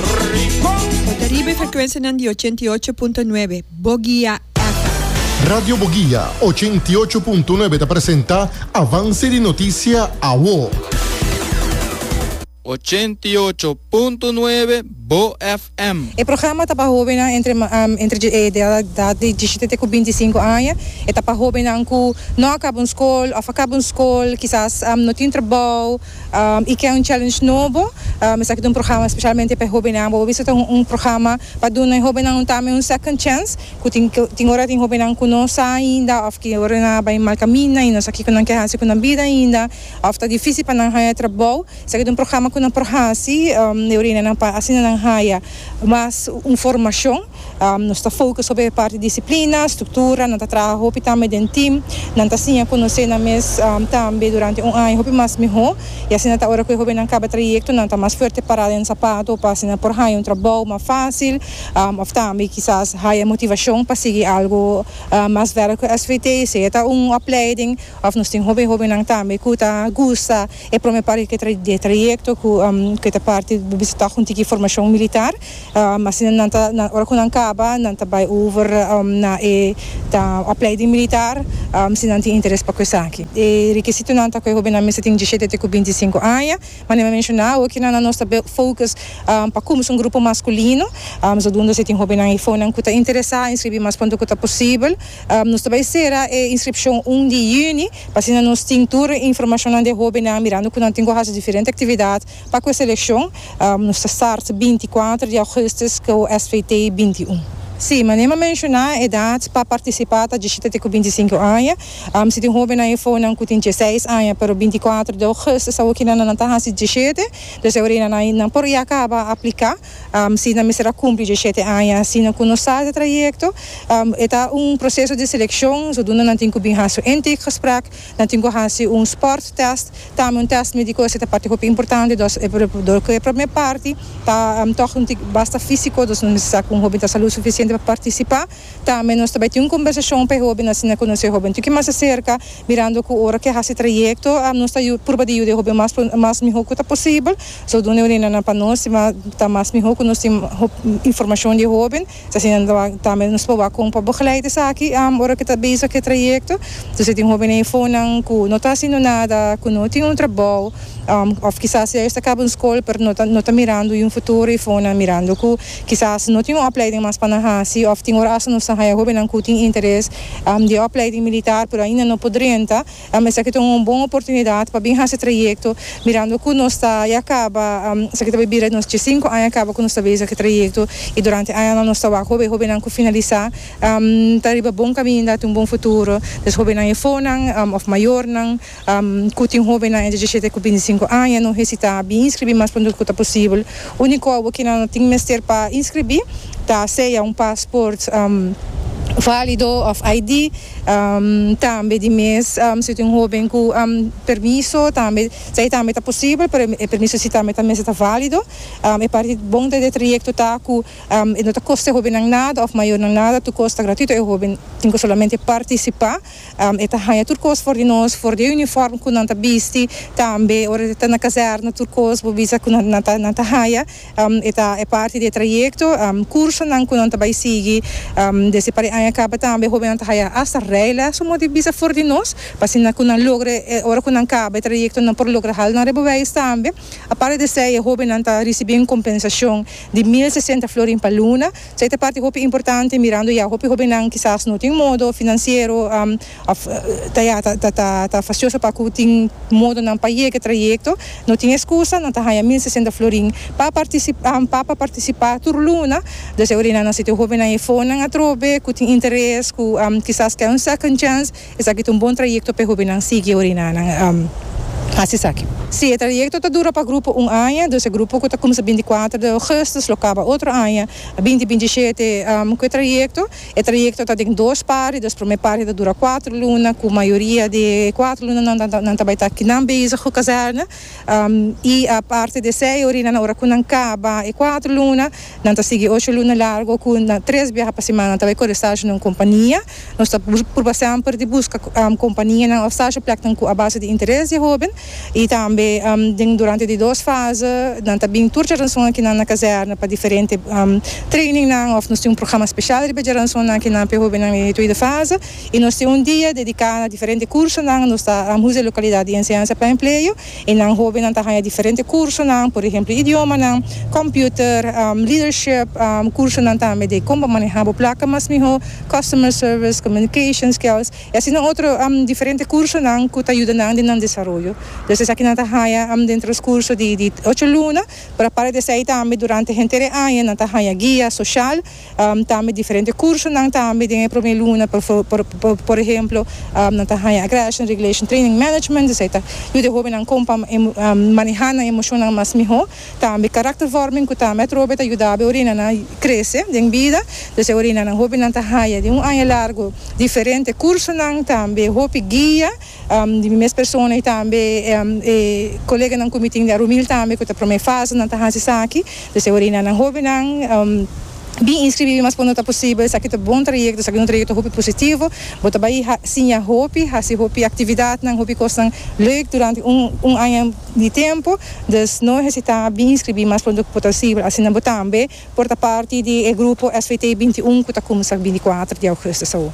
E ta riba e frekuensianan di ochenta i ocho punto nuebe, Bogia FM. Radio Bogia ochenta i ocho punto nuebe ta presenta Avance di Noticia Awo. Ochenta i ocho punto nuebe, Bo FM. E programa ta pa hobennan entre entre e edad di dishete te ku binti sinku aña. E ta pa hobennan ku no a kaba un skol òf a kaba un skol, kisas no tin trabou. I ke un challenge nobo. Esaki ta un programa specialmente pa e hobennan. Bo a bisa ta un programa pa duna e hobennan tambe un second chance. Cu tin tin ora tin hobennan cu no sa ainda of cu ora nan a bay mal caminda y no sa kico nan ke haci cu nan bida ainda of ta dificil pa nan haya trabao. Esaki ta un programa cu nan por haci. Asina nan haya. Mas un formacion. Nos ta focus sobre e parti disciplina, structura, nan ta traha hopi tambe den team, nan ta siña conoce nan mes tambe durante un aña hopi mas miho y asina ta ora cu e hobennan caba trayecto nan ta mas fuerte para den zapato pa asina por haya un trabao mas facil of tambe kisas haya motivacion pa sigui algo mas verder cu svt, sea ta un opleiding of nos tin hopi hobennan tambe cu ta gusta. E prome parti di e trayecto cu e ta parti bo bisita hunti cu e formacion militar, asina nan ta ora cu nan caba nan ta bay over na e opleiding militar si nan tin interes pa cu esaki. E requisitonan ta cu e hobennan mester tin diecisiete te cu binti y sinku aña, ma nen mi a menciona awe cu nan anos ta bay focus pa cuminsa un grupo masculino, zodoende si tin hobennan y efonan cu ta interesa inscribi mas pronto cu ta posibel. Nos ta bai sera e inskripshon un di yüni, pa asina nos tin tur e informashonnan di e hóbennan, mirando ku nan tin ku hasi diferente aktividat pa ku e selekshon. Nos ta start binti kuater di ougùstus ku SVT binti un. Sí, manera mi a menshoná, e edat pa partisipá ta djishita te ku binti sinku aña. Si tin hóbennan efónan ku tin djeseis aña pero binti kuater di ougùstus awor kinan nan ta hasi djishete, dus e orina nan por ya kaba apliká. Si nan mester a kumpli diesiete aña asina ku nos sal di e trayekto, e ta un proseso di selekshon sudunda nan tin ku bin hasi un intakegesprek, nan tin ku hasi un sporttest, tambe un test médiko esei ta parti hopi importante dus dor ku e promé parti ta tòg un tik basta físiko, dus nos mester sa ku un hopi ta salud sufisiente pa partisipá. Tambe nos ta bai tin un kombersashon p'e hoben asina konosé e hoben un tiki mas di serka, mirando ku ora ke hasi trayekto nos ta purba di yuda e hoben mas pronto mas mihó ku ta posibel, so duna e orinannan pa nos i mas ta mas mihó ku nos tin hopi informashon di e hoben, so asina tambe nos ta proba kon pa begeleid esaki ora ke ta bezig ku e trayekto, si tin hoben ei fonan ku no ta hasindu nada, ku no tin un trabou òf kisas ya ellos ta kaba un skol pero no ta no ta mirando yu futuro ei fonan mirando ku. Kisas no tin un opleiding mas pa nan hasi òf tin ora asta nos ta haya hóbennan ku tin interes di e opleiding militar pero ainda no por drenta. Esaki ta un bon oportunidat pa bin hasi trayekto mirando ku nos ta ya kaba, esaki ta bai bira nos dje sinku aña kaba ku nos ta besa ku e trayekto i durante e añanan nos ta wak hopi hóbennan ku finalisá ta riba bon kaminda, ta un bon futuro. Des hóbennan efónan òf mayornan. Cu tin hobennan entre diecisiete cu binticinco aña no hesita a bin inscribi mas pronto cu ta posibel. Unico obo cu nan a tin mester pa inscribi ta sea un paspoort valido of ID. Tambe di mes si tin hoben cu permiso tambe ta e tambe ta posibel pero e permiso si tambe ta mester ta valido. E parti bon den e trayecto ta cu e no ta costa e hobennan nada of mayornan nada tur cos ta gratuito e hoben tin cu solamente participa. E ta haña tur kos for di nos, for di e uniform ku nan ta bisti, tambe ora e ta na kazèrna tur kos bo bisa ku nan ta nan ta haña. E ta e parti di e trayekto, kursonan ku nan ta bai sigui. Desha pa e aña kaba tambe hóbennan ta haña hasta rèila su modi bisa for di nos, pa asina ku nan logra e ora ku nan kaba e trayekto nan por logra hala nan rebobeis tambe. Aparte di esei e hóbennan ta risibí un kompensashon di mil sesenta florin pa luna. Esei ta parti hopi importante mirando ya hopi hobennan kisas no tin modo finansiero of ta ya ta fasioso pa ku tin modonan pa yega e trayekto, no tin eskusa nan ta haña mil sesenta florin pa pa partisipá tur luna, dus esei orinan nan siti hobennan e fondnan atrobe ku tin interes ku kisas kè un second chance Esaki ta un bon trayekto p'e hobennan sigui oriná nan hasi esaki. Si e trayekto ta dura pa grupo un aña, dus e grupo ku ta kumsa binti kuater de ougùstus lo kaba otro aña binti binti shete ku e trayekto. E trayekto ta den dos parti, dus promé parti ta dura kuater luna ku mayoria di e kuater lunanan nan ta bai ta kinan bezig ku kazèrna. I aparte di esei yorinan ora ku nan kaba e kuater luna nan ta sigui ocho luna largo ku na tres biaha pa semana nan ta bai kore stage na un kompania. Nos ta purba semper di buska kompanianan òf stage pleknan ku a base di interes di e hoben i tambe den durante di dos fase nan ta bin tur djaranson akinan na kazèrna pa diferente treiningnan òf nos tin un programa spesial riba djaranson akinan pa e hobennan den e tweede fase. y nos tin un dia dedica na diferente cursonan, nos ta Ramhoes de Localidad y Enseñanza pa Empleo y nan hobennan ta haya diferente cursonan, por ehemplo idiomanan, computer, leadership, cursonan tambe de con bo maneha bo placa mas miho, customer service, communication skills y asina otro diferente cursonan cu ta yuda nan den nan desaroyo. Entonces esaki nan ta haya dentro nos curso di ocho luna pero aparte di esey tambe durante henter e aña nan ta haya guia social Tambe diferente kursonan tambe den e promé luna, por ehemplo nan ta haña Aggression Regulation Training Management, esei ta yuda e hóbennan kon pa manehá nan emoshonnan mas mihó, tambe karaktervorming ku tambe atrobe ta yuda bo e orenanan krese den bida, dus e orenanan hóbennan ta haña den un aña largu diferente kursonan, tambe hopi guia. Di mi mes persona y tambe e coleganan cu mi tin den Rumil tambe cu ta prome fase nan ta haci esaki. Pues ahora y na nan hobennan bin inscribi mas cuando ta posibel. Esaki ta bon trayecto, esaki un trayecto hopi positivo. Bo ta bay siña hopi, haci hopi actividadnan, hopi cosnan leuk durante un aña di tempo. Dus no hesita bin inscribi mas pronto cu posibel. Asina bo tambe por ta parti di e grupo SVT21 cu ta cuminsa binti cuater di augustus awo.